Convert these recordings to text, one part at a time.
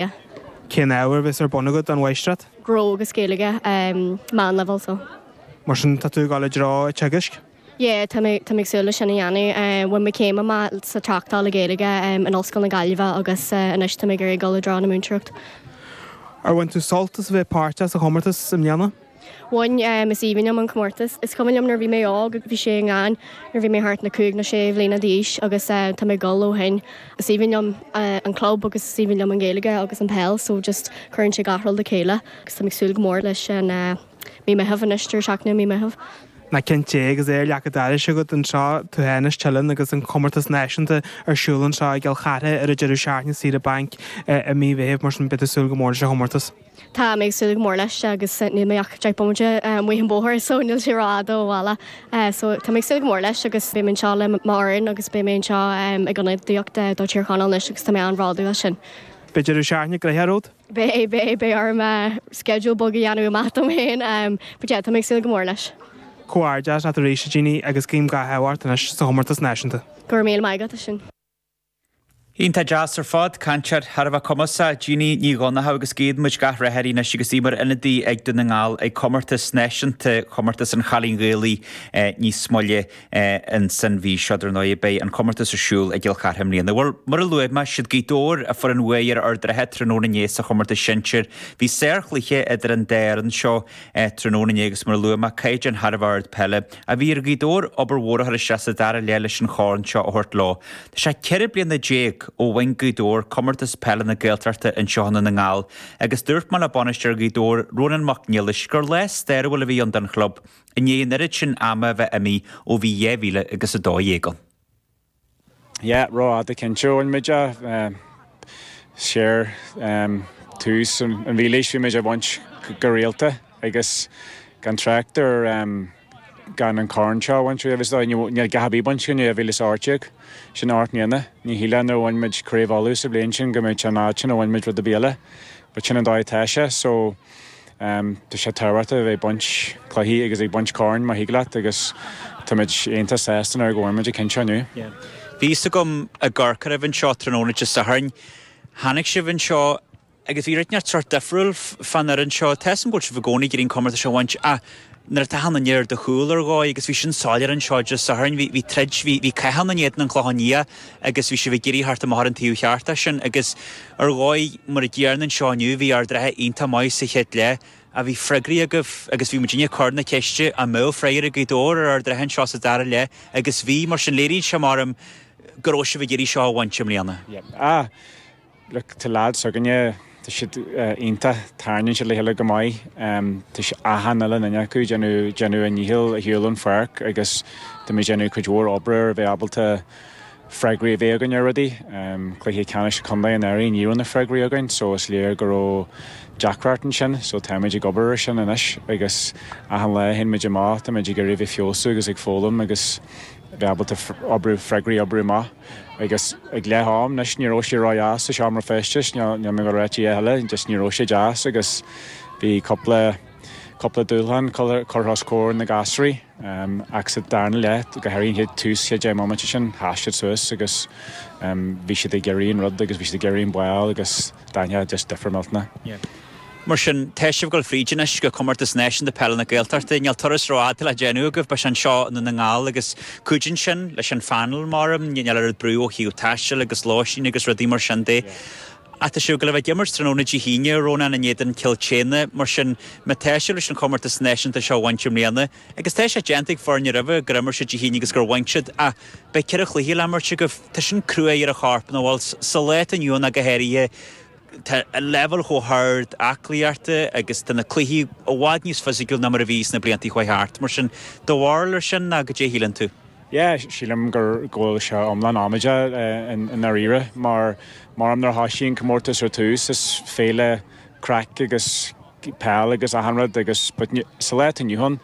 Gaeilge. Cén ábhar a bheas ar bun agat don Mháistreacht? Gnó agus Gaeilge, Meán Leibhéal, so. Mar sin, tá tú ag dul i dtreo an teagaisc? Yeah, tá mé ag súil leis sin a dhéanamh. Bhain mé céim amach sa Tráchtáil le Gaeilge in Ollscoil na Gaillimhe agus anois tá mé ag iarraidh dul i dtreo na múinteoireachta. Ar bhain tú sult as a bheith páirteach sa chomórtas i mbliana? Bhain, is aoibhinn liom an comórtas. Is cuimhin liom nuair a bhí mé óg, bhí sé i nGleann nuair a bhí mé thart na cúig nó sé bhliana d'aois agus tá mé ag gol ó shin. Is aoibhinn liom an club agus is aoibhinn liom an Ghaeilge agus an peil so just cuireann sé gach rud le chéile agus tá mé ag súil go mór leis an Mí Meitheamh anois, deireadh seachtaine i Mí Meitheamh. Na cinnte, agus é ar leac an dorais agat anseo, tú fhéin as Teileann agus an comórtas náisiúnta ar siúl anseo i gCill Chartha ar an deireadh seachtaine, saoire bainc i Mí Mheitheamh mar sin beidh tú ag súil go mór leis an chomórtas. Tá mé ag súil go mór leis agus níl mé ach deich mbomaite amuigh an bóthar so níl sé rófhada ó bhaile. So tá mé ag súil go mór leis agus beidh mé anseo le m'fhoireann agus beidh mé anseo ag ionadaíocht do Thír Chonaill anois agus tá mé an-bhródúil as sin. Beidh deireadh seachtaine gnoitheach romhat? Beidh, beidh, beidh orm schedule beag a dhéanamh amach dom féin but yeah tá mé ag súil go mór leis. Comhghairdeas leat arís a Jeannie agus guím gach rath ort anois sa chomórtas náisiúnta. Go raibh míle maith agat as sin. Iontach deas ar fad, cainteoir thar a bheith cumasach, Jeannie Ní Dhonnchadha agus guíonn muid gach rath uirthi anois agus í mar ionadaí ag Dún na nGall ag comórtas náisiúnta Chomórtas an Chailín Ghaelaigh níos moille san mhí seo. Dar ndóigh beidh an comórtas ar siúl i gCill Chartha i mbliana. Bhuel, mar a luaigh mé, is iad Gaoth Dobhair a fuair an bhuaidh ar Ard an Rátha tráthnóna inné sa chomórtas sinsir. Bhí sárchluiche idir an dá fhoireann seo tráthnóna inné agus mar a luaigh mé, caighdeán thar a bheith ard peile. a bhí ar Ghaoth Dobhair obair mhór a chur isteach sa dara leath leis an chorn seo a thabhairt leo. Tá sé ceithre bliana déag ó bhain Gaoth Dobhair Comórtas Peile na Gaeltachta anseo i nDún na nGall agus dúirt mé le bainisteoir Ghaoth Dobhair, Rónán Mac Niallais, gur lá stairiúil a bhí ann don chlub i ndiaidh an oiread sin ama a bheith imithe ó bhí 2012 ann. Yeah, rófhada cinnte ó an méid a, sure, tús an mhílaois bhí muid á bhaint go rialta agus gan trácht ar gan an corn seo a bhaint riamh is dóigh, níl a dhath ar bith bainte againn ó 2018, sin ocht mbliana, ní shílfinn nuair a bhain muid Craobh Uladh sa bhliain sin go mbeadh an fhad sin a bhain muid rud ar bith eile but sin an dóigh atá sé so, Tá sé tábhachtach a bheith ag baint cluichí agus ag baint corn, má thig leat, agus táimid iontach sásta anois go bhfuair muid an ceann seo inniu. Bhí fhios agam ag amharc oraibh anseo tráthnóna Dé Sathairn. Tháinig sibh anseo agus bhí rud inteacht sórt difriúil fán fhoireann seo. Tá fhios agam go bhfuil sibh i gcónaí ag iarraidh an comórtas seo a bhaint ach Nuair a taitheadh na nir do chúl ar dhóigh agus bhí sin soiléir anseo Dé Sathairn bhí bhí troid bhí bhí cath ann in éadan an Clochán Liath agus bhí sibh ag iarraidh theacht amach ar an taobh cheart as sin agus ar dhóigh mar an gcéanna anseo inniu bhí Ard an Rátha iontach maith sa chéad leath, bhí freagraí agaibh agus bhí muidinne ag cur na ceiste an mbeadh freagraí ag Gaoth Dobhair ar Ard an Rátha anseo sa dara leith agus bhí mar sin léiríonn sé marm go raibh sibh ag iarraidh seo a bhaint i mbliana. Yep. Ah! Look, tá leaids s'againne, tá siad iontach, tarraingíonn siad le chéile go maith, tá achan uile dhuine acu ag déanamh, déanamh a ndícheall ar shiúl ón pháirc agus táimid ag déanamh cuid mhór oibre ar a bheith ábalta freagraí a bheith againn ar rudaí. Cluiche Ceannais Contae anuraidh, ní raibh na freagraí againn so is léir go raibh deacracht ansin so táimid ag obair ar sin anois agus achan lá a théann muid amach táimid ag iarraidh a bheith ag feabhsú agus ag foghlaim agus a bheith ábalta oibriú, freagraí a oibriú amach. Agus ag leath am, anois, ní raibh sé ródheas sa seomra feistis, níl mé ag gabháil a ráit a dhath eile, just ní raibh sé deas agus bhí cúpla, cúpla dúshlán curtha os comhair na gasraí. Ach sa darna leath, go háirithe an chéad, tús chéad deich mbomaite sin, sheas siad suas agus bhí siad ag iarraidh an rud agus bhí siad ag iarraidh an ball agus d'aithin tú just difear millteanach. Mar sin, tá sibh fríd anois go Comórtas Náisiúnta Peile na Gaeltachta. Níl turas rófhada le déanamh agaibh, beidh sé anseo i nDún na nGall agus cuidíonn sin leis an phainéal, maram, níl a oiread brú ó thaobh taistil agus lóistín agus rudaí mar sin de. Ach tá sibh ag gabháil a bheith ag imirt tráthnóna Dé hAoine, Rónán in éadan Cill tSéadhna, mar sin má tá sibh leis an Chomórtas Náisiúnta seo a bhaint i mbliana, agus tá sé déanta ag foirne roimhe gur imir siad Dé hAoine agus gur bhain siad, ach beidh ceithre chluiche le himirt agaibh, tá sin crua ar an chorp nó bhuel, sa lá atá inniu ann ach go háirithe. Tá an leibhéal chomh hard aclaíochta agus tá na cluichí i bhfad níos fisiciúil ná mar a bhí sna blianta a chuaigh thart. Mar sin, do bharúil ar sin, nó goidé a shíleann tú? Yeah, sílim go bhfuil sé iomlán amaideach i ndáiríre, mar maram nuair a thosaigh an comórtas ar tús, is féile craic agus peil agus achan rud agus but sa lá atá inniu ann,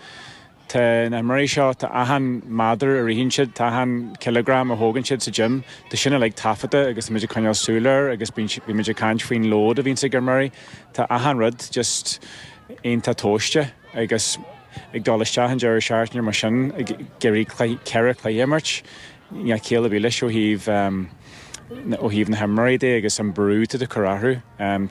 Tá na himreoirí seo, tá achan méadar a ritheann siad, tá achan cileagram a thógann siad sa gym, tá sin uilig taifeadta agus tá muid ag coinneáil súil air agus bíonn sé, bíonn muid ag caint faoin lód a bhíonns á chur ar imreoirí. Tá achan rud just iontach tomhaiste agus ag dul isteach an deireadh seachtaine mar sin ag iarraidh cluiche, ceithre chluiche a imirt, níl a dhath céille ar bith leis ó thaobh, ó thaobh na himreoirí de agus an brú atá tú ag cur orthu.